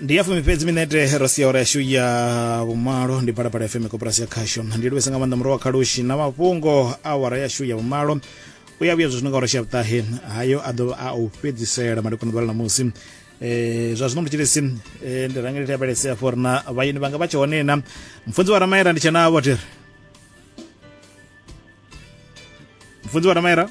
ndi ya fumi fhedzi minete ro sia ora yashu ya vhumalo ndi phalaphala fm koporasi ya khasho ndi livhesa nga maanḓa muro wa khalushi na mafhungo a wara yashu ya vhumalo u ya vhuya zwi no nga ora shavhutahe hayo a ḓo a u fhedzisela madekwana ḓuvha ḽa ṋamusi Eh, zwa zwino mutshilisi eh, ndi rangeli lavhelesea for na vhayeni vhanga vha tshe hone na mfunzi wa ramaera ndi tshe navho tiri mfunzi wa ramaera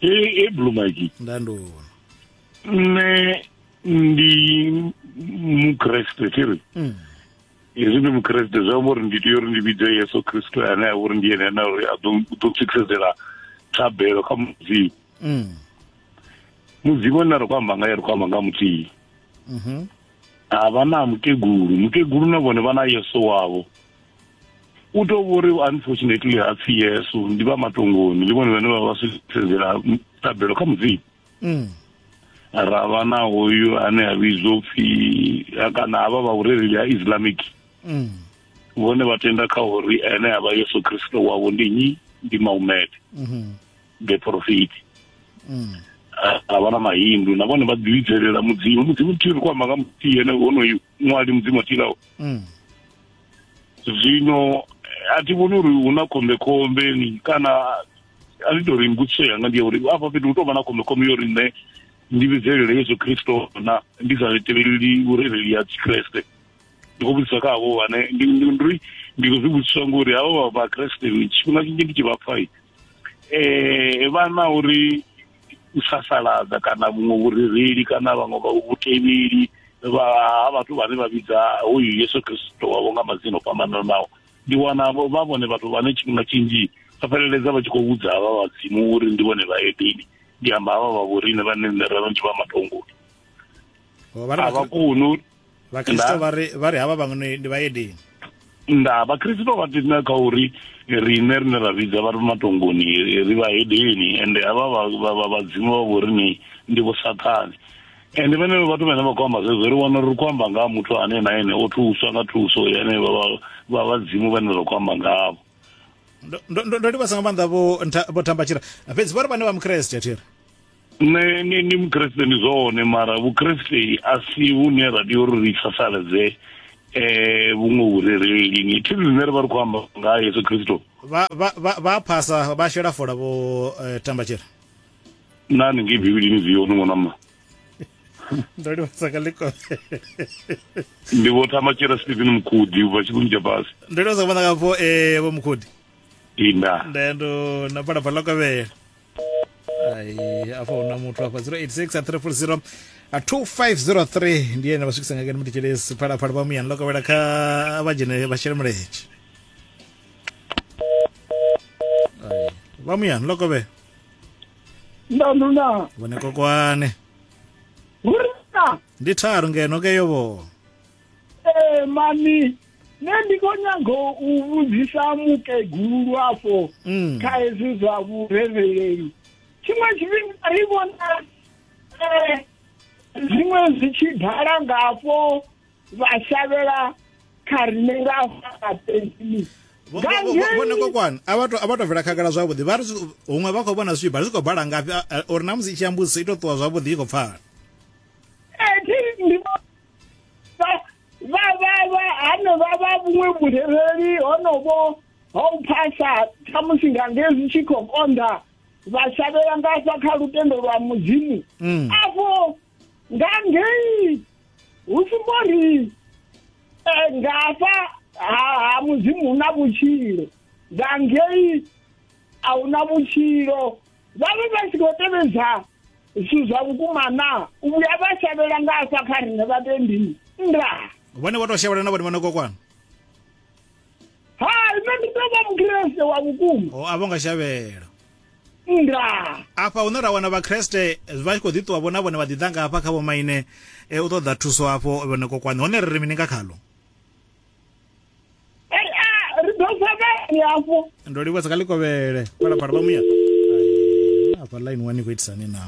e blue mike ndandona nne ndi mukreste tiri mm. hezwi ndi mukreste zwi amba uri ndi tea uri ndi vhidze yesu kristu ane a uri ndi yene ane uri a ḓo tswikisedela thabelo kha mudzimu mm. mudzimu ane ri khou amba ngaye ri khou amba nga muthihi mm-hmm. a vha na mukegulu mukegulu na vhone vha na yesu wavho u tou vho ri unfortunately ha pfi yesu ndi vha matongoni ndi vhone vhane vha vha sedzela ṱabelo kha mudzimu mm. ra vha na hoyu ane a vhidzwa pfi kana havha vha vhurereli ha islamic mm. vhone vha tenda kha uri ene a vha yesu kristo wavho ndi nyi ndi maumete mm-hmm. the profiti mm. a vha na mahindu na vhone vha ḓivhidzelela mudzimu mudzimu thi ri kwamba nga muthihi ene honoyu ṅwali mudzimu a tilaho mm. zwino a thi vhoni uri hu na khombekhombe kana a ndi to ri mbudziso yanga ndi ya uri afha fhethu hu tou vha na khombekhombe yo uri nṋe ndi vhidzelele yesu khristo na ndi sa tevheleli vhurereli ya tshikreste ndi khou vhudzisa kha havho vhane ndi ri ndi khou zwi vhudziswa ngori havho vha vhakreste tshifhinga tshinzhi ndi tshi vha pfai eh vha na uri u sasaladza kana vhuṅwe vhurereli kana vhaṅwe vha vhutevheli vha vhathu vhane vha vhidza hoyu yesu kristo wavho nga madzina o fhambananaho ndi wana vha vhone vhathu vhane tshifhinga tshinzhi vha fheleledza vha tshi khou vhudza havha vhadzimu uri ndi vhone vha edeni ndi amba havha vha vhorine vhane nṋe ra vhanzhi vha matongoni a vha koni vhakristo vha ri vha ri havha vhaṅwe ndi vhayedini nda vhakristo vha tenda kha uri rine rine ra vhidza vha ri matongoni ri vhahedeni ende havha vhadzimu vha vho rine ndi vho sathane ende vhenevho vhathu vhane vha khou amba zwezwo ri wana uri ri khou amba nga ha muthu ane na ene o thuswa nga thuso yane vha vhadzimu vhane ra khou amba ngavho ndo livhasa nga maanḓa vho thambatshira fhedzi vha ri vhane vha mukreste thiri nṋe ni ni mukriste ndi zwone mara vhukriste a si vhune ra tea uri ri sasaledze eh vhuṅwe vhurereli ni thi zwine ri vha ri khou amba nga yesu kristo vha phasa vha shela fola vho eh, tambatshela nani ngei bivhilini zwi yone ṅwanama ndo livhasa ka likole ndi vho tambatshela stephen mukhudi ubva tshikuni tsha fhasi ndo livhasa ka vhona ka vho eh, vho mukhudi inda ndendo na phalaphala lokavhela ai afha huna muthu afha 086 340 2503 ndi ene vha swikisa ngakani mutitshelesi phalaphala vha muyani ḽo kovhela kha vha dzhene vha shele mulenzhe Ai, vha muyani ḽo kovhela ndanuna vhone kokwane hurina ndi tharu ngeno ke yo vho ee mani nṋe ndi khou nyaga u vhudzisa mukegulu lwafho mm. kha hezwi zwa vhurereleli tshiṅwe tshifhinga ri vhona eh, zwiṅwe zwi tshi ḓala ngafho vha shavhela kha rine nga faaeni vhona kokwana a vha to bvela khagala zwavhuḓi vha ri huṅwe vha khou vhona zwi tshi bala zwi khou bala ngafhi uri na musi i tshi ambudziso i to ṱuwa zwavhuḓi i khou pfala eh, vha vha vha hanevha vha vhuṅwe vhurereli honovho ha u phasa khamusi nga nge zwi tshi khou konḓa vha shavhela nga hafha kha lutendo lwa mudzimu mm. afho nga ngei hu sumbo ri eh, nga hafha ha mudzimu hu na vhutshilo nga ngei a hu na vhutshilo vha vhe vha tshi khou tevhedza zwithu zwa vhukuma na u vhuya vha shavhela nga afha kha riṋe vhatendi nda vhone vho tou shavhela na vhone vha no kokwana hai nṋe ndi tou vha mukreste wa vhukuma o a vho nga shavhela nda afha hune ra wana vhakreste vha tshi khou ḓi ṱuwa vho na vhone vha ḓiḓa nga afha kha vhomaine e, u ṱoḓa thuso afho vhone kokwana hone ri ri mini nga khalo ri ḓo sa vhani hafho ndo livhuwa sa kha likovhele phalaphala vha muya hafha line wani khou itisani na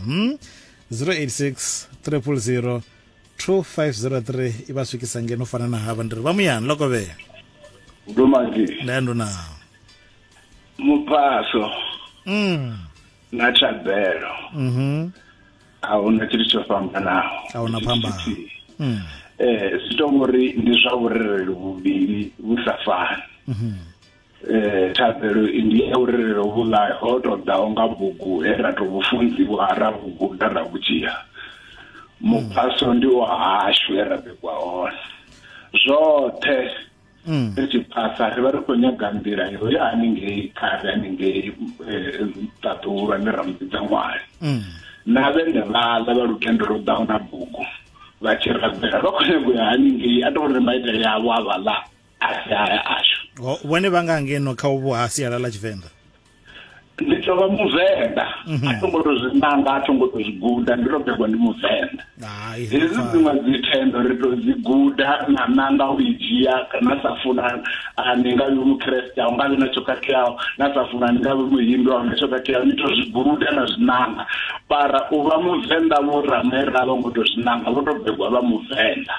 086 300 2503 i vha swikisa ngeno fana na havha ndi ri vha muyani lokovhele ndumazi nda ndo na mupaso mm na thabelo mhm a huna tshithu tsho fhambanaho a huna phambano mm. eh zwi to ngori ndi zwa vhurereli vhuvhili vhu sa fani mhm. eh thabelo ndi ya vhurereli vhu la ho to daho nga bugu he ra to vhufunziwa ra bugu da ra vhudzia muphaso ndi wa hashu he ra bikwa hone zwoṱhe mm. ri tshi phasa ri vha ri khou nyaga nḓila yo ya haningei khare haningei eh, ṱaḓulu ane ra muvhidza ṅwali mm. na vhene vhaḽa vha lutendo lwo ḓaho na bugu vha tshi rabela vha khou nyaga u ya haningei a to ri maitele avho a vhaḽa a si haya ashu vhone vha nga ngeno kha uvho ha sialala tshivenḓa ndi tou vha muvenḓa mhm. a tho ngo to zwi nanga a tho ngo to zwi guda ndi to begwa ndi muvenḓa hezwi dziṅwe dzi thendo ri to dzi guda na nanga u i dzhia na sa funa ni nga vhi mukreste a nga vhi na tsho khakheaho na sa funa ni nga vhi muhindu a nga tsho khakheaho ni to zwi guda na zwi nanga para u vha muvenḓa vho ramera vho ngo to zwi nanga vho to begwa vha muvenḓa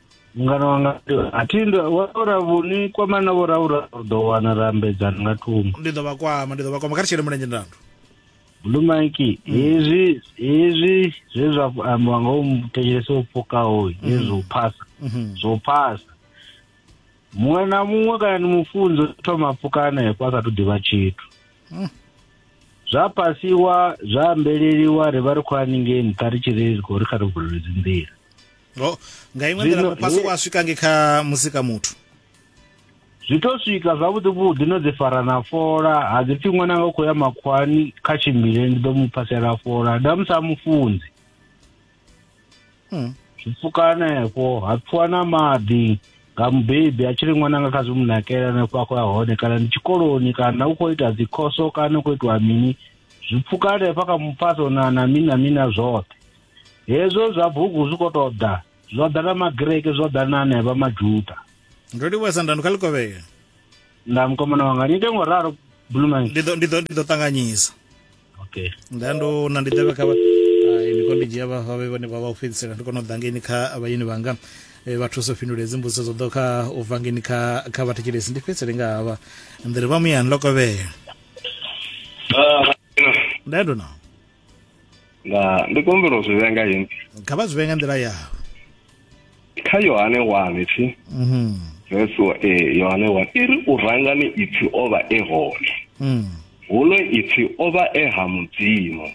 mungana wanga a thi ndo wa ora vhuni kwamana vho ra ura ri ḓo wana ra ambedzana nga thungo ndi ḓo vha kwama ndi ḓo vha kwama kha ri tshele mulenzhe ndandu blue mike mm. hezwi hezwi zwe zwa ambiwa nga u thetshelesa u pfukaho mm-hmm. hezwi u phasa mm-hmm. zwo phasa muṅwe na muṅwe kana ni mufunzo thoma pfuka hanefho a sa thu ḓivha tshithu mm. zwa pasiwa zwa ambeleliwa ri vha ri khou haningei nṱha ri tshi ri khou ri kha ri vulelezi nḓila ro nga iṅwe nḓila muphasuko a swika nge kha musika muthu zwi to swika zwavhuḓi vhuḓi no dzi fara na fola ha dzi pfhi ṅwana nga u khou ya makhwani kha tshimbile ndi ḓo mu phasela fola nda musi a mufunzi hmm. zwi pfuka hanefho ha pfiwa na maḓi nga mubebi a tshi ri ṅwana nga kha zwi mu nakela hanefho a khou ya hone kana ndi tshikoloni kana u khou ita dzikhoso kana u khou itiwa mini zwi pfuka hanefha kha muphaso na na mini na mini na zwoṱhe hezwo zwa bugu zwi khou tou ḓa zwo ḓa na magreke zwo ḓa na anevha majuda ndo livhuwa sandano kha likovhela nda mukomana wanga ni ite ngo ralo bluman ndi ḓo ndi ḓo ṱanganyisa okay nda ndo na ndi ḓevhe kha ndi khou ndi dzhia vha vhe vhane vha vha u fhedzisela ndi kona u ḓa ngeni kha vhayeni vhanga Eh, vha thusa u fhindula hedzi mbudziso dzo ḓo kha u bva ngeni kha kha vhathetshelesi ndi fhedzisele nga havha ndi ri vha muyani lokovhela ah, nda ndo nao na ndi khou humbela u zwi vhenga yini kha vha zwi vhenga nḓila yawe kha yohane wane thi mhm. vesi wa e eh, yohane wane i ri u rangani ipfi o vha e hone mm. huno ipfi o vha e ha mudzimu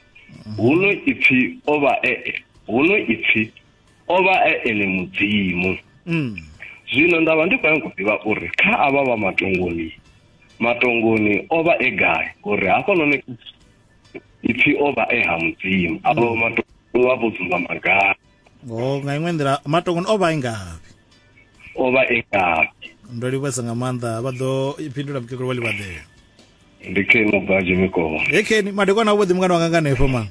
mm. huno ipfi o vha e huno ipfi o vha e ene mudzimu mm. zwino nda vha ndi khou yango ḓivha uri kha avha vha matongoni matongoni o vha e gai uri hafhanoni ipfi o vha e ha mudzimu a vha matongo vha vho dzumba magala o oh, nga iṅwe nḓila matongoni o vha e ngavhi o vha e ngavhi ndo livhuwesa nga maanḓa vha ḓo fhindula mukegulu wa livhaḓela ndi keni mubvaji mikomo e keni madekwana a vhuḓi mungana wanga nga nefho ma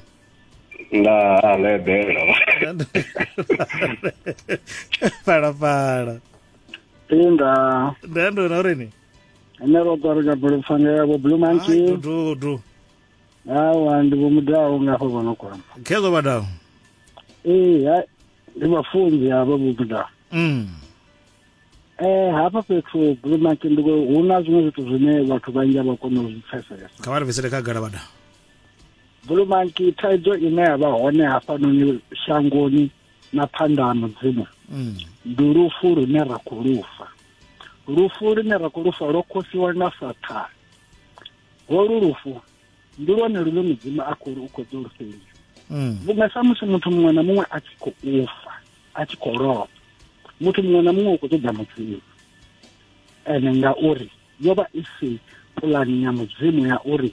nda lebela phalaphala inda nda ndo na uri ni ene ro ṱwa ri ka bulufhanga ya vho blue monkey dudu awa ndi vho mudaho nga hafho vho no kwama khezo vhadaho ee hai ndi vhafunzi havho vho mudaho mm. eh hafha fhethu blue monkey ndi hu na zwiṅwe zwithu zwine vhathu vhanzhi a vha kona u zwi pfesesa kha vha ri bvisele khagala vhadaho blue monkey thaidzo ine ya vha hone hafhanoni shangoni na phanḓa ha mudzimu mm. ndi lufu lune ra khou lufa lufu lune ra khou lufa lwo khosiwa na sathana holu lufu ndi lwone lune mudzimu a khou u khou ḓo lufhelisa mm. vhunga samusi muthu muṅwe na muṅwe a tshi khou ufa a tshi khou lovha muthu muṅwe na muṅwe u khou ṱoḓa mudzimu ene ngauri yo vha i si pulani ya mudzimu ya uri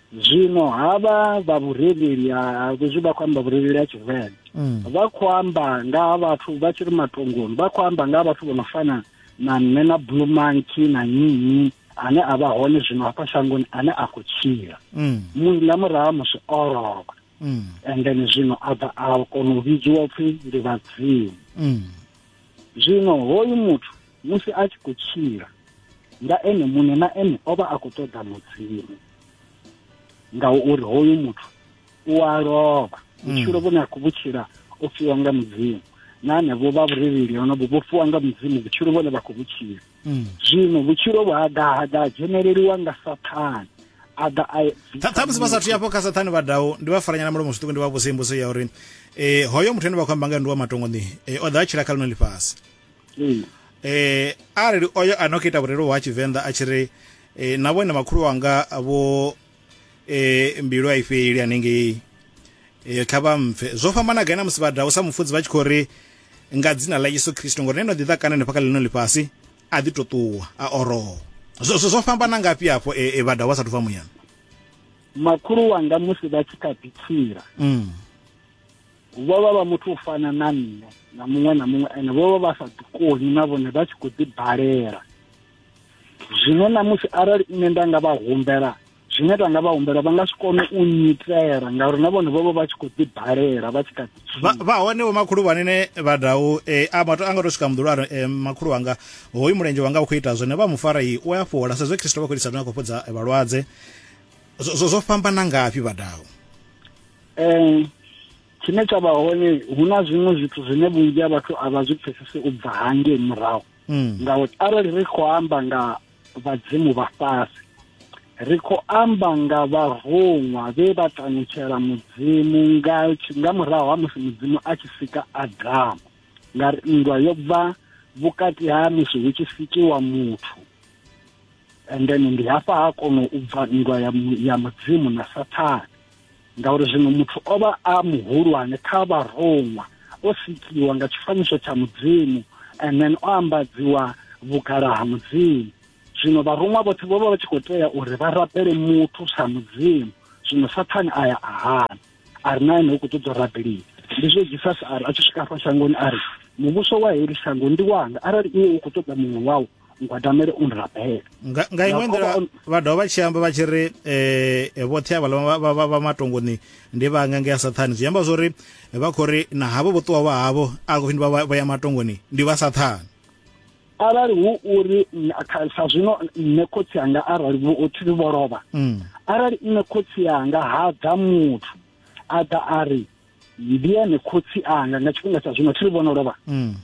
zwino havha vha vhurereli ha vhezwi vha khou amba vhurereli ha tshivenḓa mm. vha khou amba nga ha vhathu vha tshi ri matongoni vha khou amba nga ha vhathu vho no fana na nṋe na blue monkey na nyinyi ane a vha hone zwino hafha shangoni ane a khou tshila mm. nga murahu ha musi o lovha mm. and then zwino a bva a kona u vhidziwa pfhi ndi vhadzimu zwino hoyu muthu musi a tshi khou tshila nga ene muṋe na ene o vha a khou ṱoḓa mudzimu ngauri hoyu muthu u a lovha hmm. vhutshilo vhune a khou vhutshila o fiwa nga mudzimu na hanevho vha vhurereli honovho vho fiwa nga mudzimu vhutshilo vhone vha khou vhutshila hmm. zwino vhutshilo vhu ha ḓa ha ḓa ha dzheneleliwa nga sathane a ḓa a ṱhamusi vha sathu yafho kha sathane vha dawo ndi vha faranyana mulomo zwiṱuku ndi vha vhusimbuso ya uri um hoyo muthu ane vha khou amba nga ndi wa matongo ni eh, o ḓa a tshila kha ḽino ḽifhasi um arali oyo a no kita vhurelo ha tshivenḓa a tshi ri eh, na vhone makhulu wanga vho eh, mbilu a i fheli hanengei eh, kha vha mpfe zwo fhambana gai na musi vha dau sa mufudzi vha tshi khou ri nga dzina ḽa yesu khristo ngori neno ḓiḓa kana nefha kha ḽino ḽifhasi a ḓi to ṱuwa a oroho zwo fhambana ngafhi hafho e, e, vha dau vha sathu bva muyani makhulu wanga musi vha tshi kha ḓi tshila mm. vho vha vha muthu u fana na nṋe na muṅwe na muṅwe ene vho vha vha sa ḓikoni na vhone vha tshi khou ḓibalela zwino na musi arali nṋe nda nga vha humbela zwine nda nga vha humbela vha nga si kone u nyitela ngauri na vhone vho vha vha tshi khou ḓibalela vha tshi kha ḓi vha hone vho makhulu vhanene vha dau eh, a mato a nga to swika muḓulu a eh, makhulu wanga hoyu mulenzhe wanga u khou ita zwone vha mu fara i u a fhola sa zwe kristo vha khou itisa zwine a khou fhodza eh, vhalwadze zwo fhambana ngafhi vha dau um tshine tsha vha hone hu na zwiṅwe zwithu zwine vhunzhi ha vhathu a vha zwi pfesese u bva hangei murahu mm. ngauri arali ri khou amba nga vhadzimu vha fhasi ri khou amba nga vharuṅwa vhe vha tanutshela mudzimu nga nga murahu ha musi mudzimu a tshi sika adamu ngari nndwa yo bva vhukati ha musi hu tshi sikiwa muthu and then ndi hafha ha kono u bva nndwa ya mudzimu na sathane ngauri zwino muthu o vha a muhulwane kha vharoṅwa o sikiwa nga tshifanyiso tsha mudzimu and then o ambadziwa vhugala ha mudzimu zwino vharoṅwa vhoṱhe vho vha vha tshi khou tea uri vha rabele muthu sa mudzimu zwino sathane a ya a hana a ri na ene u khou ṱoḓa rabeliwa ndi zwo jesus a ri a tshi swika afha shangoni a ri muvhuso wa heli shango ndi wanga arali iwe u khou ṱoḓa muṅwe wau ngwadamele u nrabela nga nga iṅwe nḓila vha dovha vha tshi amba vha tshi ri um vhoṱhe avhala vha matongoni ndi vha nga ngea sathane zwi amba zwori vha khou ri na havho vhoṱuwa vha havho a khou fhindi vha ya matongoni ndi vha sathane arali hu uri sa zwino nṋe khotsi anga arali vhothi vho lovha mm. arali nṋe khotsi anga ha ḓa muthu a ḓa a ri ndi ene khotsi anga nga tshifhinga tsha zwino thi vhona lovha mm.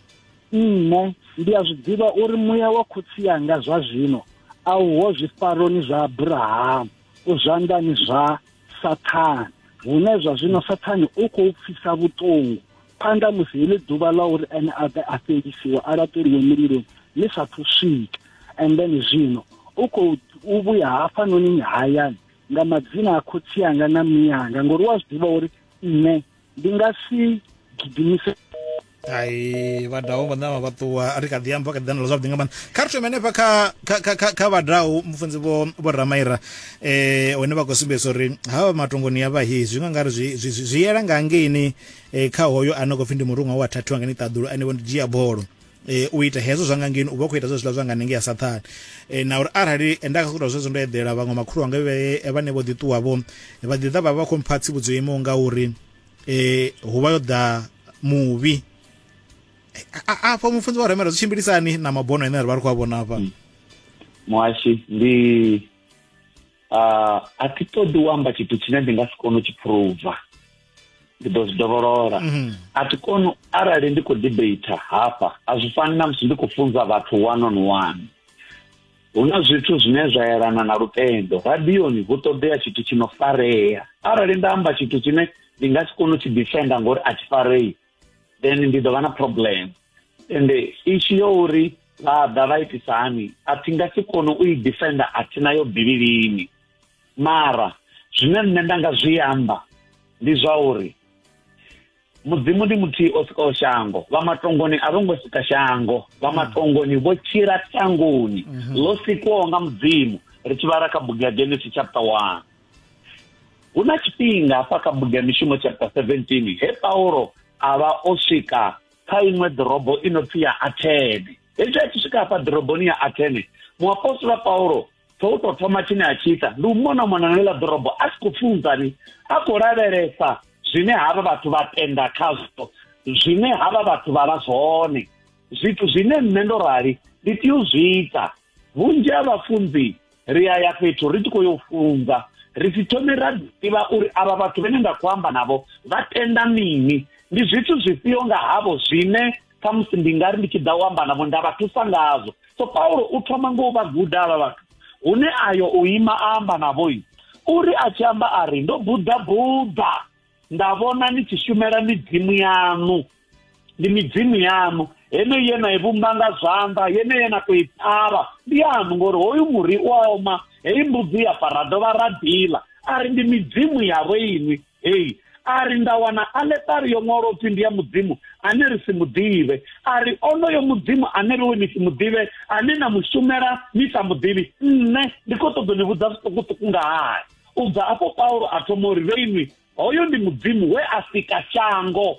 nne ndi a zwi ḓivha uri muya wa khotsi anga zwa zwino a uho zwifaroni zwa abrahamu u zwanḓani zwa sathane hune zwa zwino sathane u khou pfisa vhuṱungu phanḓa musi heḽi ḓuvha ḽa uri ene a ḓe a fhelisiwe a laṱeliwe mililoni ḽi sa thu swika and then zwino u khou u vhuya hafhanoni hayani nga madzina a khotsi anga na mii anga ngori wa zwi ḓivha uri nṋe ndi nga si gidimise ai vhadau vhone vha vha ṱuwa ri kha ḓi amba kha ḓi zwavhuḓi nga maanḓa kha ri thome hanefha kha kha kha kha vhadau mufunzi vho vho ramaira eh hone vha khou sumbedzisa uri ha vha matongoni ya vha hi zwi nga ngari zwi zwi yela nga ngeini eh, kha hoyo ane khou pfhi ndi muruṅwa wa thathiwa nga ni ṱaḓulu ane vho ndi dzhia bolo e, u ita hezwo zwa nga ngeni u vha u khou ita zwezwiḽa zwa nga nenge ya sathane e, na uri arali nda nga sokuta zwezwo ndo eḓela vhaṅwe makhulu wanga vhane vho ḓiṱuwa vho vha ḓiḓa vha vha khou mpha tsivhudzo yo imaho nga uri eh hu vha yo ḓa muvhi afha mufunzi wa remela zwi tshimbilisani na mabono ane ra vha ri khou a vhona afha mm. muhashi ndi uh, a thi ṱoḓi u amba tshithu tshine ndi nga si kone u tshi phuruva ndi ḓo zwi dovholola mhm. a thi koni arali ndi khou debata hafha a zwi fani na musi ndi khou funza vhathu one on one hu na zwithu zwine zwa yelana na lutendo radioni hu ṱoḓea tshithu tshi no farea arali nda amba tshithu tshine ndi nga si kone u tshi defenda ngori a tshi farei then ndi ḓo vha na problem ende ishu yo uri vha ḓa vha itisa hani a thi nga si kone u i defenda a thi nayo bivhilini mara zwine nṋe nda nga zwi amba ndi zwa uri mudzimu ndi muthihi o sikaho shango vha matongoni a vho ngo sika shango vha mm. matongoni vho tshila tangoni mm-hmm. ḽo sikwaho nga mudzimu ri tshi vhala kha bugu ya genesis chapter one hu na tshifhinga hafha kha bugu ya mishumo chapter 17 he paulo a vha o swika kha iṅwe ḓorobo i no pfi ya athene hezwi a tshi swika hafha ḓoroboni ya athene muapostola paulo tsho u tou thoma tshine a tshi ita ndi u mona mona na ḽiḽa ḓorobo a si khou pfunzani a khou lavhelesa zwine havha vhathu vha tenda khazwo zwine havha vhathu vha vha zwone zwithu zwine nṋe ndo rali ndi tea u zwi ita vhunzhi ha vhafunzi ri a ya fhethu ri tshi khou yo funza ri si thome ra ḓivha uri avha vhathu vhene nda khou amba navho vha tenda mini ndi zwithu zwifhio nga havho zwine khamusi ndi nga ri ndi tshi ḓa u amba navho nda vha thusa ngazwo so paulo u thoma ngo u vha guda avha vhathu hune ayo u ima a amba navho uri a tshi amba a ri ndo buḓa buḓa nda vhona ni tshi shumela midzimu yaṋu ndi midzimu yaṋu heneyi ye na i vhumba nga zwanḓa yeneyi ye na tou i ṱhavha ndi yaṋu ngori hoyu muri u oma heyi mbudzi ya fa ra dovha ra ḓila a ri ndi midzimu yavho inwi heyi a ri nda wana aletari yo ṅwalo pfhi ndi ya mudzimu ane ri si muḓivhe a ri onoyo mudzimu ane riwe ni si muḓivhe ane na mushumela ni sa muḓivhi nṋe ndi khou ṱoḓo ni vhudza zwiṱukuṱuku nga hae U bva afho Paulo a thoma uri vhe inwi hoyo ndi mudzimu we a sika shango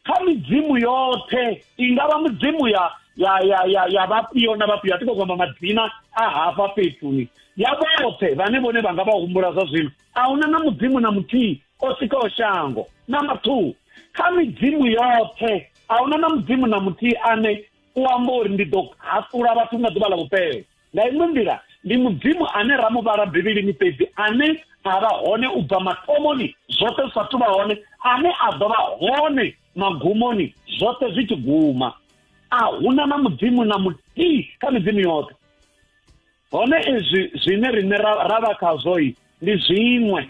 kha midzimu yoṱhe i nga vha midzimu ya ya ya ya ya vhafhio na vhafhio a ti khou kwamba madzina a hafha fhethuni ya vhoṱhe vhane vhone vha nga vha humbula zwa zwino a huna na mudzimu na muthihi o sikaho shango na mathuhu kha midzimu yoṱhe a huna na mudzimu na muthihi ane u amba uri ndi ḓo haṱula vhathu nga ḓuvha ḽa vhupele nga iṅwe nḓila ndi mudzimu ane ra mu vhala bivhilini fhedzi ane a vha hone u bva mathomoni zwoṱhe zwi sa thu vha hone ane a ḓo vha hone magumoni zwoṱhe zwi tshi guma a huna na mudzimu na muthihi kha midzimu yoṱhe hone izwi zwine riṋe ra vha khazwoi ndi zwiṅwe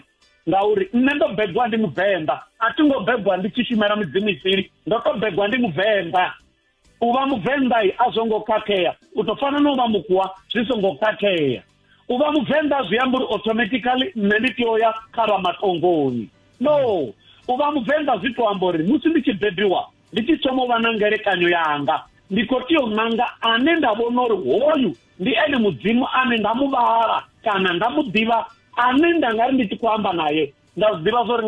ngauri nṋe ndo begwa ndi muvenḓa a thi ngo begwa ndi tshi shumela midzimu isili ndo to begwa ndi muvenḓa u vha muvenḓa a zwo ngo khakhea u to fana na u vha mukua zwi songo khakhea u vha muvenḓa zwi amba uri automatically nṋe ndi tea ya kha vha matongoni no u vha muvenḓa zwi to amba uri musi ndi tshi bebiwa ndi tshi thoma u vha na ngelekanyo yanga ndi khou tea u nanga ane nda vhona uri hoyu ndi ene mudzimu ane nda mu vhala kana nda mu ḓivha ane nda nga ri ndi tshi khou amba naye nda zwi ḓivha zwo ri